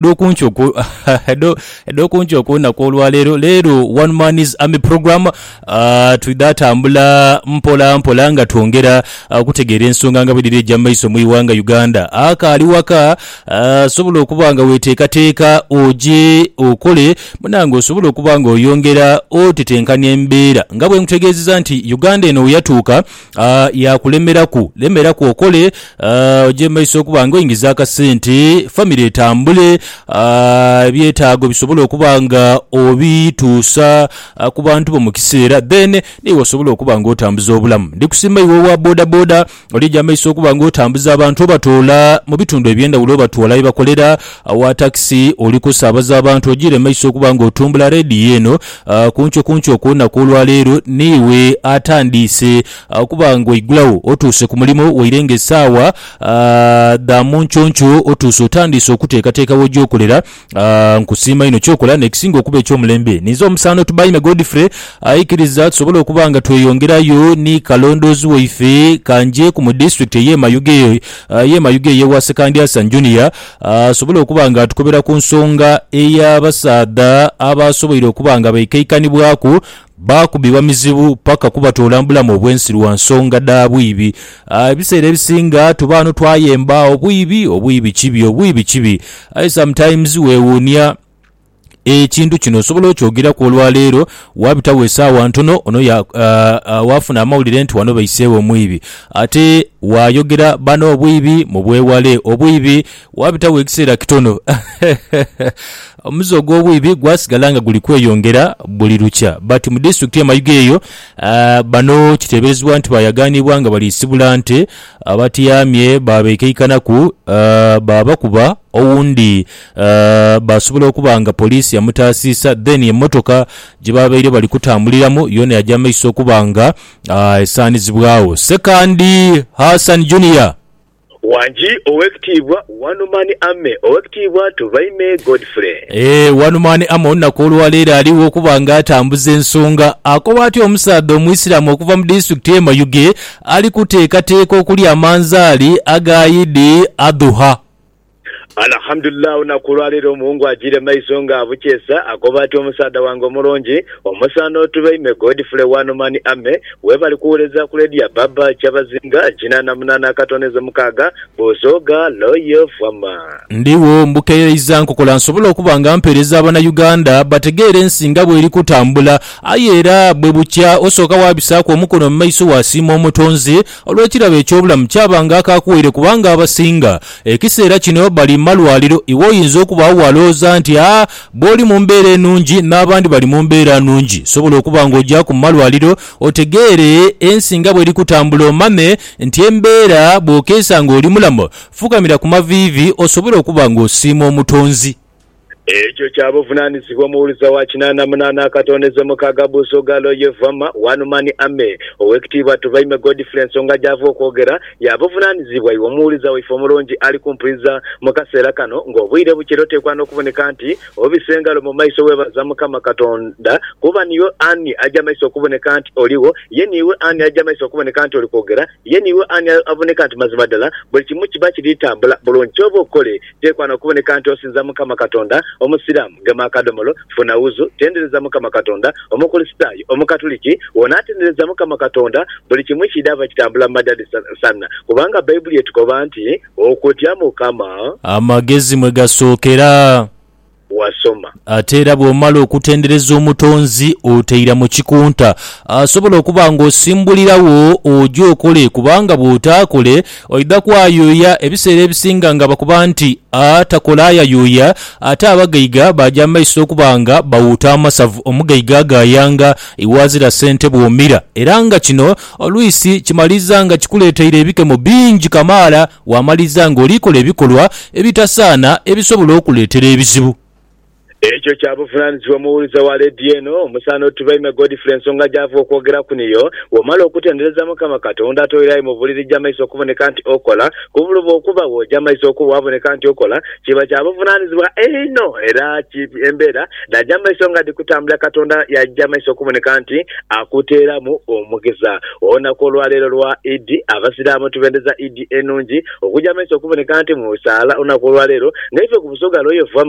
Dhokunki okwo dhokunki okwonaku olwaleero leero one man is army program uh, twidha tambula mpola mpola nga twongera uh, kutegeera ensonga nga bwedhiri eja maiso mu iwanga Uganda akaali waka uh, sobola okuba nga weteekateeka oje okole munange osobola okuba nga oyongera otetenkanya embeera nga bwenkutegeezeza nti Uganda eno weyatuuka Uh, yakulemeraku lemeraku okole uh, oje maiso okuba nga oingiza akasente famire etambule uh, ebyetaago bisobole okuba nga obituusa uh, ku bantu bo mu kiseera then niwe osobola okuba nga otambuza obulamu ndikusiima iwe owa boda boda olija maiso okuba nga otambuza abantu obatoola mu bitundu ebyendawulo obatwala yebakolera owa takisi oli kusaabaza abantu ojiire maiso okuba nga otumbula rediyo eno Kunkyo kunkyo okw'olunaku olwa leero n'iwe atandiise okuba ng'oigulagho otuuse ku mulimo waire ng'esaawa dha mu nkyonkyoo otuuse otandiise okuteekateeka w'oja okolera. Nkusiima inho ky'okola. N'ekisinga okuba eky'omulembe, ninze omusaano Tubaime Godfrey aikiriza tusobole okuba nga tweyongerayo ni kalondoozi waife. Ka nje ku mu disitulikiti ey'e Mayuge, ey'e Mayuge ey'ewa Sekandyasanyi Junior. asobole okuba nga atukobera ku nsonga ey'abasaadha abaasoboire okuba nga baikaikanibwaku baakubibwa mizibu paka kubatoola mu bulamu obw'ensi lwa nsonga dha bwibi. Ebiseera ebisinga tuba ghano twayemba, obwibi, obwibi kibi, obwibi kibi. Aye sometimes weewuunia. Ekintu kino osobola okyogeraku olwa leero, waabitagho esaawa ntono ono ya, uh, uh, waafuna amawulire nti wano baiseegho omwibi. Ate waayogera bano obwibi mubwewale. Obwibi waabitagho ekiseera kitono omuze ogw'obwibi gwasigala nga guli kweyongera buli lukya. But mu disitulikiti ye Mayuge eyo, uh, bano kiteeberezebwa nti baayagaanibwa nga bali sibula nte abatyaamye baabekeikanaku, uh, baabakuba owundi Baasobola okuba nga poliisi yamutaasiisa then emmotoka gye baabaire bali kutambuliramu yoona yaja maiso okuba nga esaanizibwagho. Ssekandi Hassan Junior. Wangi Owekitiibwa One Man Army Owekitiibwa Tubaime Godfrey. Eeh One Man Army olunaku olwaleero aligho okuba nga atambuza ensonga. Akoba atyo omusaadha omuisiramu okuva mu disitulikiti ye Mayuge ali kuteekateeka okulya amanzaali aga Idi Adhuha. Alhamdulillah olunaku olwaleero omuwungu ajiire maiso nga abukyesa akoba ati omusaadha wange omulungi omusaana otube ime Godfrey wano mani ame webali kuwuleza ku lady ya baba kyabazinga kinaana munaana akatonezo mukaaga Busoga loyal farmer. Ndigho mbukereiza nkokola nsobole okuba nga mpeereza abana Uganda bategeere ensi nga bweri kutambula aye era bwebukya osooka wabisaaku omukono mumaiso wasiima omutonzi Olw'ekirabo eky'obulamu kyaba nga akakuwaire kubanga abasinga ekiseera kino bali malwaliro. Iwe oyinza okubaagho bw'alowooza nti, A, bw'oli mu mbeera enungi n'abandi bali mu mbeera nungi. Sobola okuba ng'ogyaku mu malwaliro otegeere ensi nga bw'eri kutambula omanye nti embeera bw'okeesa ng'oli mulamu. Fukamira ku maviivi osobole okuba ng'osiima Omutonzi. Ekyo kya buvunaanyizibwa omuwuliza wa kinaana munaana akatondeze mukaaga Buso Galo ye Vama One Man Army. Owekitiibwa Tubaime Godfrey ensonga gyava okwogera ya buvunaanyizibwa iwe omuwuliza waife omulungi ali kumpuliza mu kaseera kano nga obwire bukira oteekwa n'okuboneka nti obisa engalo mu maiso weebaza Mukama Katonda kuba niiwe ani aja maiso okuboneka nti oligho ye niiwe ani aja maiso okuboneka nti oli kwogera ye niiwe ani aboneka nti mazima ddala buli kimu kiba kiri tambula bulungi kyova okole Byekwana okuboneka nti osinza Mukama Katonda, Omusiraamu gema akadomolo, funa wuzu, tendereza Mukama Katonda, Omukulisitaayo, Omukatuliki, wona atendereza Mukama Katonda, buli kimu kidhava kitambula mu madadi sanna, kubanga Baibuli etukoba nti, Okutya Mukama. Amagezi mwe gasookera. wasoma. Ate era bw'omala okutendereza Omutonzi otaira mu kikunta. Asobola okuba ng'osimbuliragho oje okole kubanga bw'otaakole oidha kwayuuya. Ebiseera ebisinga nga bakoba nti atakola ayayuuya, ate abagaiga baaja mu maiso okuba nga bawuuta amasavu. Omugaiga agaayanga iwaazira sente bw'omira era nga kino olwisi kimaliza nga kikuleeteire ebikemo bingi kamaala. Waamaliriza ng'oli kola ebikolwa ebitasaana ebisobola okuleetera ebizibu. Ekyo kya buvunaanyizibwa omuwulize wa leediyo eno. Musaana otubaime Godfrey ensonga gy'ava okwogeraku niyo, Bw'omala okutendereza Mukama Katonda ate oirayo mu buliri jamaiso okuboneka nti okola, ku buloba okubagho jamaiso okubwo waaboneka nti okola, Kiba kya buvunaanizibwa einho era kibi embeera dhaja mu maiso nga dhi kutambula Katonda yaja maiso okuboneka nti akuteeramu omugisa. Olunaku olwa leero lwa Idi, Abasiraamu tubendeza Idi enungi okuja maiso okuboneka nti mu saala olunaku olwa leero, nga ife ku Busoga Royal Fam.